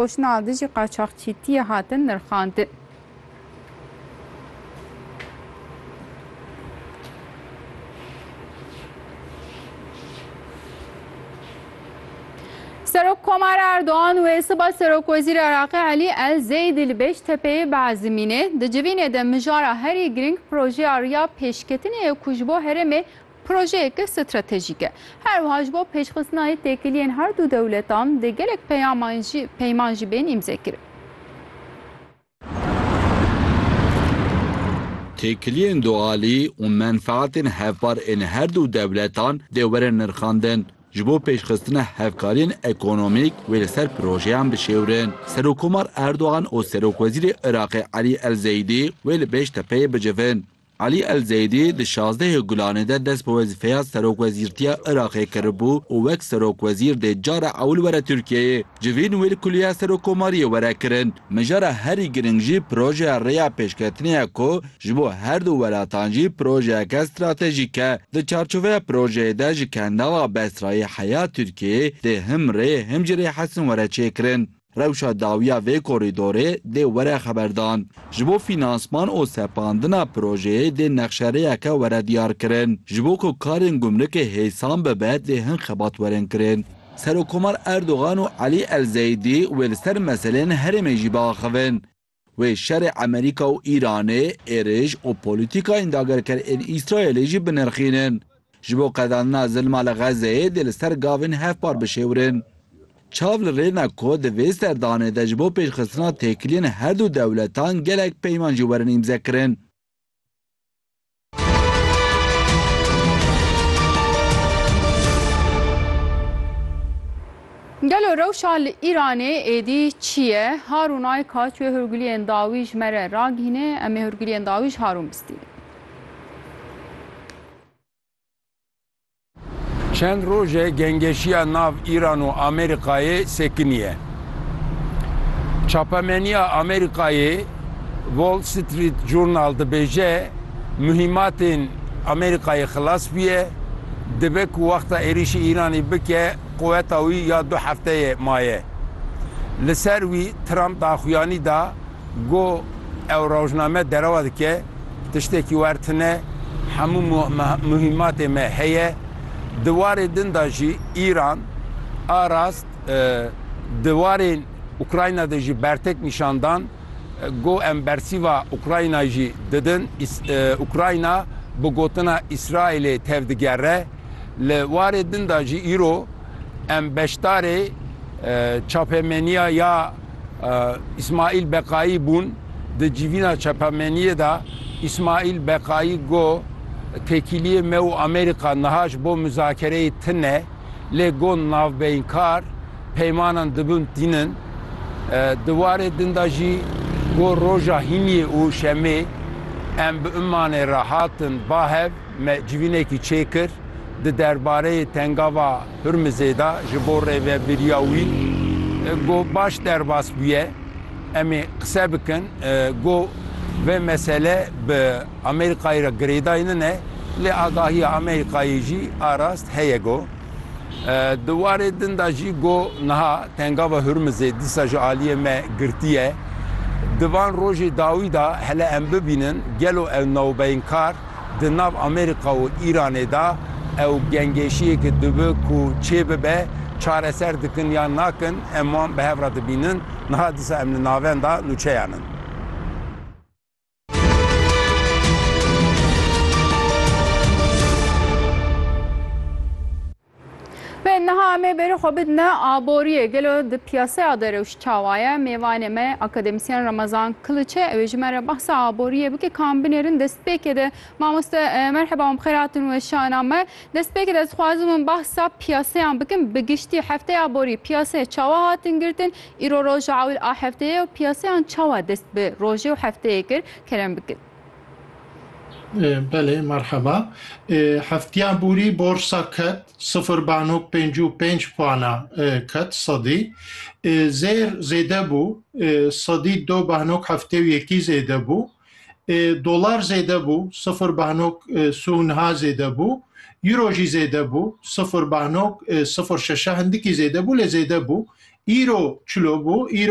Koşna li dijî qaçaxçîtiyê hatin nirxandin. Serokkomar Erdogan wê siba Serokwezîrê Iraqê Elî El Zeydî li Bêştepeyê biezimînê. Di civînê de mijara herî girîng projeya riya pêşketinê ye ku ji bo herêmê Projeyeke stratejîk e. Her wiha ji bo pêşxistina yê têkiliyên her du dewletan dê gelek peyaman jî peyman jî bên îmzekirin. Têkiliyên dualî û menfeatên hevpar ên her du dewletan dê werin nirxandin. Ji bo pêşxistina hevkariyên ekonomîk wê li ser projeyan bişêwrin. Serokkomar Erdogan û Serokwezîrê Iraqê Elî El Zeydî wê li Bêştepeyê bicivin. Elî El Zeydî di şazdehê Gulanê de dest bi wezîfeya Serokwezîrtiya Iraqê kiribû û wek serokwezîr dê cara ewil were Tirkiyeyê. Civîn wê li Kuliya Serokkomariyê were kirin. Mijara herî girîng jî projeya rêya pêşketinê ye ku ji bo her du welatan jî projeyeke stratejîk e. Di çarçoveya projeyê de ji Kendala Besrayê heya Tirkiyeyê dê him rê him jî rê Hesin were çêkirin. Rewşa dawiya vê korîdorê dê were xeberdan. Ji bo fînansman û sepandina projeyê dê nexşerêyeke were diyarkirin. Ji bo ku karên gumrikê hêsan bibe dê hin xebat werin kirin. Serokkomar Erdogan û Elî El-Zeydî wê li ser meseleyên herêmê jî biaxivin. Wê şerê Amerîka û Îranê, êrîş û polîtîkayên dagerker ên Îsraîlê jî binirxînin. Ji bo qedandina zilma li Xezzeyê dê li ser gavên hevpar bişêwirin. Çav li rê ne ku di vê serdanê de ji bo pêşxistina têkiliyên herdu dewletan gelek peyman jî werin îmzekirin. Gelo rewşa li Îranê êdî çi ye? Harûn Ayka çûye hûrgiliyên dawî ji me re ragihîne, em ê hûrgiliyên dawî ji Harûn bistînin. Çend roj e gengeşiya nav Îran û Amerîkayê sekiniye. Çapemeniya Amerîkayê Wall Street Journal dibêje muhîmatên Amerîkayê xilas bûye, dibe ku wexta êrîşê Îranê bike quweta wî ya du hefteyê maye. Li ser wî Trump daxuyanî da, Go ew rojname derewa dike, tiştekî wer tune, hemû muhîmatê me heye. Di warê din de jî Îran a rast di warên Ukrayna de jî bertek nîşan dan go em bersîva Ukraynayê jî didin. Ukrayna bi gotina Îsraîlê tevdigere. Li warê din de jî îro em beşdarê çapemeniya ya. Îsmaîl Beqayî bûn. Di civîna çepemeniyê de Îsmaîl Beqayî got, Têkiliyê me û Amerîka niha ji bo mizakereyê tine, lê got navbeynkar peymanan dibin tînin. Di warê din de jî got roja hîniyê û şemê em bi Ummanê re hatin ba hev, me civînekî çêkir di derbareyê tengava, Hurmizê de ji bo rêvebiriya wî got baş derbas bûye em ê qise bikin, got vê mesele bi Amerîkayê re girêdayî nine lê agahiya Amerîkayê jî arast heye got. Di warê din de jî got niha Tengava Hurmizê dîsa ji aliyê me girtî ye. Di van rojê dawî de hele em bibînin gelo ew newbeynkar Di nav Amerîka û Îranê de ew gengêşiyeke dibe ku çê bibe, çareser dikin yan nakin em wan bi hev re dibînin, niha disa em li navenda nûçeyan in. Ve niha em ê berê xwe bidine aboriyê. Gelo di piyaseya de rewş çawa ye? Mêvanê me akademisyen Ramazan Kiliç e. Ew ê ji me re behsa aboriyê bike ka em binêrin destpêkê de. Mamoste merheba wan bi xêr hatin weşana me. Destpêkê de ez dixwazim min behsa piyaseyan bikim bi giştî. Hefteya borî piyaseyê çawa hatin girtin? Îro roja ewil a hefteyê ye û piyaseyan çawa dest bi rojê û hefteyê kir? Kerem bikin. Belê merheba. Heftiya bûrî borsa ket sifir banok pêncî û pênc puana ket sedî. Zêr zêde bû sedî do banok heftê û yekî zêde bû. Dolar zêde bû sifir banok sî û niha zêde bû. Euro jî zêde bû sifir banok sifir şeşe hindikî zêde bû lê zêde bû. Îro çilo bû. Îro